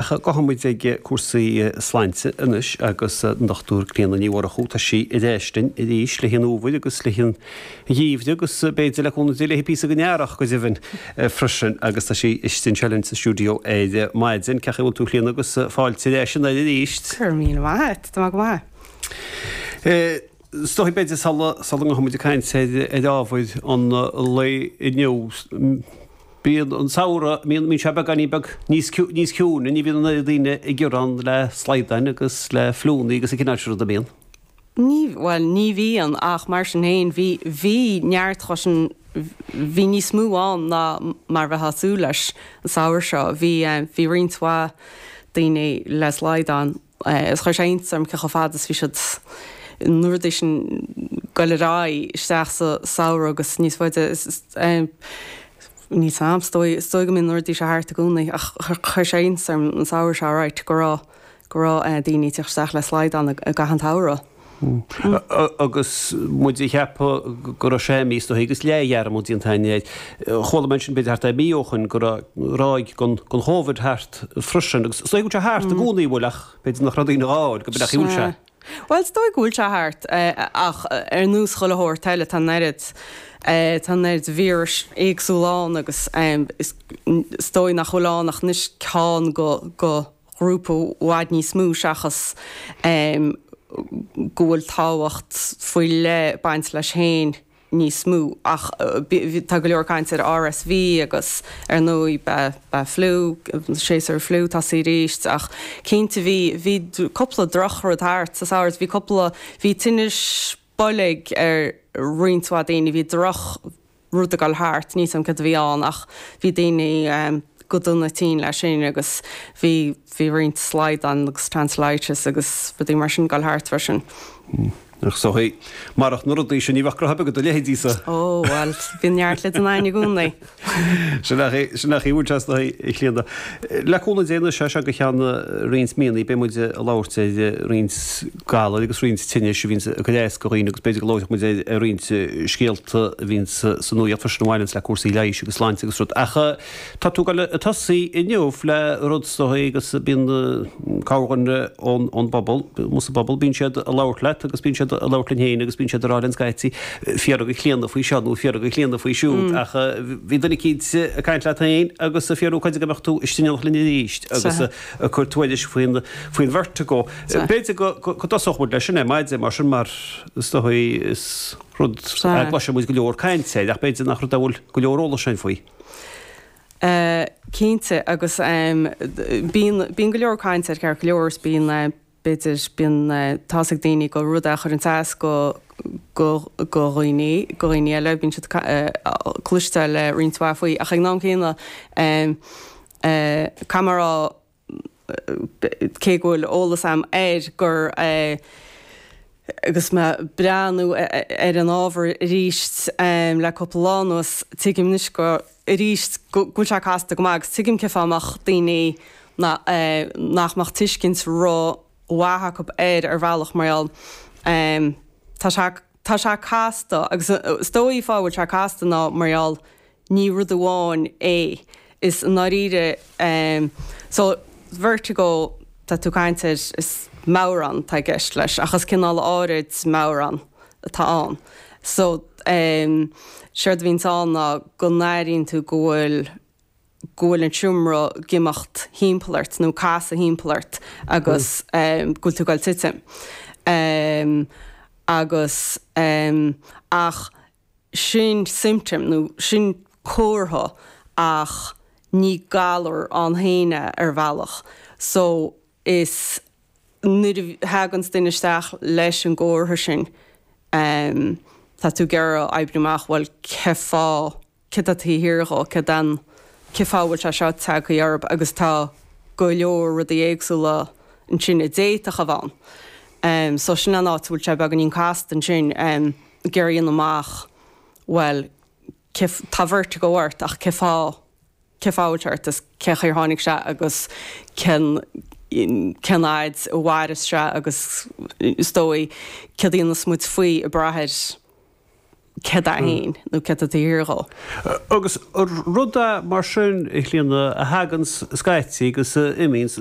Ach gabhfaidh muid ag cúrsaí sláinte anois agus an Dr. Clíona Ní Mhurchú, tá sí ar ais linn arís le haghaidh an fhómhair agus le haghaidh an gheimhridh agus b'fhéidir le cúnamh Dé le haghaidh píosa den earrach go deimhin freisin agus tá sí istigh anseo linn sa stiúideo ar maidin. Cén chaoi a bhfuil tú a Chlíona agus fáilte ar ais ar an aer arís. Go raibh míle maith a't, tá mé go maith. Is dóigh b'fhéidir sula ngabhfaidh muid ag caint ar ábhair an lae inniu, bíonn an samhradh, bíonn sé beagáinín beag níos ciúine, ní bhíonn daoine ag gearán le slaghdáin agus le fliúnna agus an cineál sin ruda, an mbíonn? Ní, bhuel ní bhíonn ach mar sin féin bhí, bhí neart casacht ann, bhí níos mó ann ná mar a bheifeá ag súil leis an samhradh seo, bhí, bhí roinnt mhaith daoine le slaghdán. Is chuir sé iontas orm cé chomh fada is a bhí siad an uair dheireanach sin ag goil ar aghaidh isteach sa samhradh agus níos faide níl a fhios agam is dóigh is dóigh go mbíonn an rud seo thart i gcónaí ach chuir sé iontas orm an samhradh seo right go raibh go raibh daoine ag teacht isteach le slaghdán i gcaitheamh an tsamhraidh. Agus muid ag ceapadh go raibh sé imithe as agus leathdhearmad déanta againn air, chuala mé ansin, b'fhéidir thart ar mhí ó shoin, go raibh ráig den Chóibhid thart freisin. Agus is dóigh go bhfuil sé thart i gcónaí, an bhfuil? Ach b'fhéidir nach raibh daoine á fháil go bealach, an bhfuil sé? Bhuel, is dóigh go bhfuil sé thart, ach ar nós chuile shórt eile, tá an oiread, tá an oiread víris éagsúla ann agus is dóigh nach bhfuil ann ach anois ceann de, de, ghrúpa i bhfad níos mó seachas go bhfuil tábhacht faoi leith ag baint leis féin níos mó ach tá go leor caint ar RSV agus ar ndóigh beidh fliú, séasúr fliú ag tosaí arís ach cinnte bhí bhí cúpla droch rud thart sa samhradh, bhí cúpla, bhí tinnis boilg ar roinnt mhaith daoine, bhí droch, rud ag goil thart, níl a fhios agam céard a bhí ann ach bhí daoine go han-tinn leis sin agus bhí bhí roinnt slaghdán agus tonsillitis agus rudaí mar sin ag goil thart freisin. Ach sin é. Marach na rudaí sin ní bheadh gnaithe de do leithéidíse. Ó bhuel, bíonn neart le déanamh i gcónaí. Sin nach é, sin nach é a bhfuil sé as do thaobh, a Chlíona. Le cúnamh Dé anois as seo go ceann roinnt míonna beidh muid ag labhairt ar roinnt galair agus roinnt tinnis a bhíonn ag cur as do dhaoine agus b'fhéidir go labhróidh muid ar roinnt scéalta a bhíonn sa nuacht freisin a bhaineanns le cúrsaí leighis agus sláinte agus rud. Ach tá tú ag goil ag tosaí inniu le rud sa chaoi agus bíonn cabhair ón bpobal, ón bpobal, bíonn siad ag labhairt leat agus bíonn siad ag labhairt linn féin agus bíonn siad ag rá linn scaití, fiafraigh de Chlíona faoi seo nó fiafraigh de Chlíona faoi siúd ach bhí duine eicínt ag caint leat féin agus ag fiafraí cáide go mbeadh tú istigh in éineacht linn arís agus ag cur tuairisc faoin faoin vertigo. B'fhéidir go go dtosódh muid leis sin ar maidin mar sin mar is dóigh is rud a gcloiseann muid go leor caint air ach b'fhéidir nach rud a bhfuil go leor eolais againn faoi. Cinnte agus bíonn go leor caint air go leor is bíonn b'fhéidir, bíonn, tá's ag daoine gur rud é a chuireanns as go, go, go dhaoine, go dhaoine eile, bíonn siad cloisteáil roinnt mhaith faoi ach ag an am céanna caithfidh mé a rá cé go bhfuil eolas a'm air gur agus mé breathnú ar an ábhar aríst le cúpla lá anuas, tuigim anois go. arís go bhfuil sé casta go maith agus tuigim cén fáth a mbeadh daoine nach mbeadh tuiscint ró-mhaith acu air ar bhealach mar gheall tá sé tá sé casta agus is dóigh fáth a bhfuil sé casta ná mar gheall ní rud amháin é is i ndáiríre so vertigo tá tú caint air is meadhrán tá i gceist leis ach is cineál áirid meadhrán atá ann. So, em, séard a bhíonns ann ná go n-airíonn tú go bhfuil, go bhfuil an seomra ag imeacht thimpeall ort nó ag casadh thimpeall ort agus, em, go bhfuil tú ag dul titim. Em, agus, em, ach sin symptom nó sin comhartha ach ní galar ann fhéin é ar bhealach. So, is. nuair a thaganns duine isteach leis an gcomhartha sin tá tú ag iarraidh oibriú amach bhuel cén fáth, céard atá taobh thiar dhó, céard é an, cén fáth a bhfuil sé seo tagtha orthu agus tá go leor rudaí éagsúla ansin a d'fhéadfadh a bheith ann. So sin an áit a bhfuil sé beagáinín casta ansin ag iarraidh dhéanamh amach bhuel cé, tá vertigo ort ach cén fáth, cén fáth a bhfuil sé ort is cén chaoi ar tháinig sé agus cén cén fhaid a mhairfeas sé agus is dóigh céard a dhéanfas muid faoi ag brath ar céard é fhéin nó céard atá taobh thiar dhó. Agus rud é mar sin a Chlíona a thaganns scaití agus a imíonns.